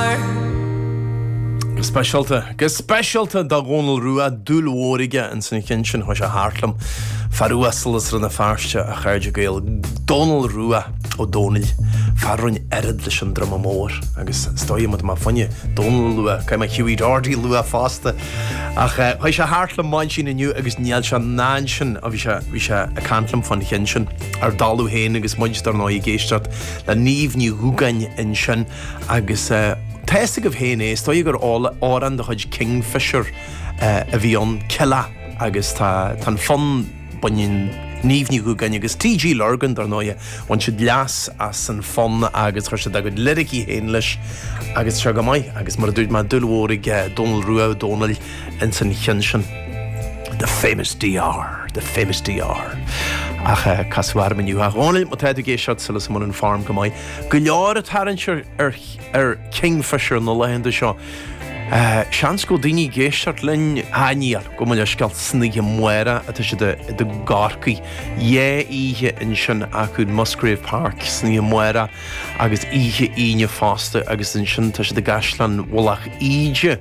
Go speisialta, go speisialta do Dhónal Rua, dúil mhór aige ins an chinn sin, chuaigh sé thart liom. Fear uasal as Rann na Feirste a chairde Gael, Dónal Rua Ó Dónaill, fear a rinne oiread leis an druma mór agus stoigh muid mar fuinneadh, Dónal Rua, cad é mo Hughie Doherty Rua fosta. Ach eh, chuaigh sé thart liom maidin sin inniu agus níl sé ansin, ó bhí sé, bhí sé ag caint liom fán chinn sin, ar dalladh féin agus muid dar ndóigh ag éisteacht le Niamh Ní Dhúgáin ansin. Agus tá a fhios agaibh féin é, is dóigh gur amhrán de chuid Kingfishr a bhí ann, 'Killeagh' agus tá an fonn, baineann Niamh Ní Dhúgáin agus TG Lurgan, dar ndóighe, bhain siad leas as an fonn agus chuir siad a gcuid liricí féin leis agus seo go maith. Agus mar a dúirt mé, dúil mhór ag Dónal Rua Ó Dónaill ins an cheann sin. The famous DR, the famous DR. Ach casadh orm inniu. A Dhónaill, má tá tú ag éisteacht, súil agam go bhfuil an fhoirm go maith. Go leor ag tarraingt ar Kingfishr na laethanta seo. Seans go bhfuil daoine ag éisteacht linn aniar go mbeidh leithscéal san oíche amárach atá siad i gCorcaigh. Dhá oíche ansin acu in Musgrave Park san oíche amárach agus oíche Aoine fosta agus ansin tá siad i gCaisleán Mhullach Íde.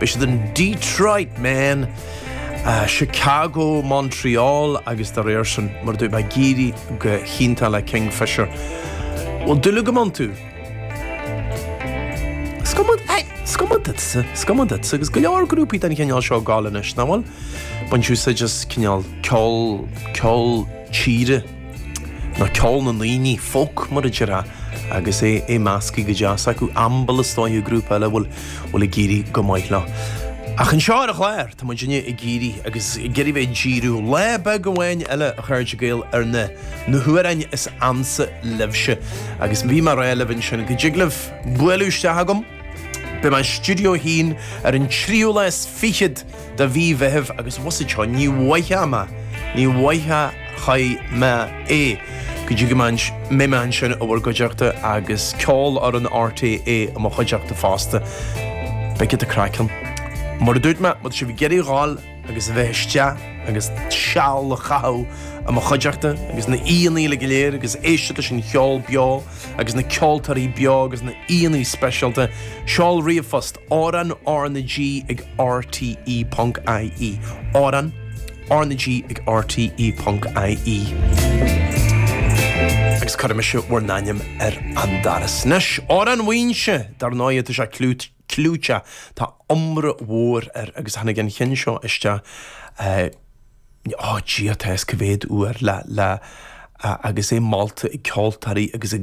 Beidh siad in Detroit, Maine, Chicago, Montreal agus dá réir sin, mar dúirt mé, ag éirí go hiontach le Kingfishr. Bhfuil dúil agam iontu? Is cuma duitse, is cuma duitse agus go leor grúpaí den chineál seo ag gabháil anois, nach bhfuil? Baint úsáid as cineál ceol, ceol tíre. Ná ceol na ndaoine, folk mar a déarfá, agus é measctha go deas acu. Amble is dóiche grúpa eile a bhfuil bhfuil ag éirí go maith leo. Ach anseo ar an gclár tá muidinne ag iarraidh agus ag iarraidh bheith ag díriú lá beag amháin eile a chairde Gael ar na na hamhráin is ansa libhse. Agus bhí mé ag rá libh ansin. Go dtig libh bualadh isteach agam. Beidh mé in Stiúideo a hAon ar an tríú lá is fichead. de mhí Mheithimh agus muise go deo ní mhothóidh mé, ní mhothóchaidh mé é go dtí go mbeidh mé ansin i bhur gcuideachta agus Ceolfhoireann RTÉ i mo chuideachta fosta. Beidh cinnte craic ann. Mar a dúirt mé, má tá sibh ag iarraidh dhul agus a bheith isteach agus seal a chaitheamh i mo chuideachta agus na aíonna uile go léir agus éisteacht leis an cheol beo agus na ceoltóirí beo agus na aíonna speisialta, seol ríomhphost Amhrán RnaG ag RTÉ.ie. Amhrán RnaG ag RTÉ.ie. Agus cuirfidh mise bhur n-ainm ar an doras. Anois, Amhrán Mhaínse, dar ndóigh, tá sé clúiteach, tá iomrá mhór air agus tháinig an cheann seo isteach eh, ag Dia atá a fhios cá mhéad uair, le, le, agus é molta ag ceoltóirí agus ag.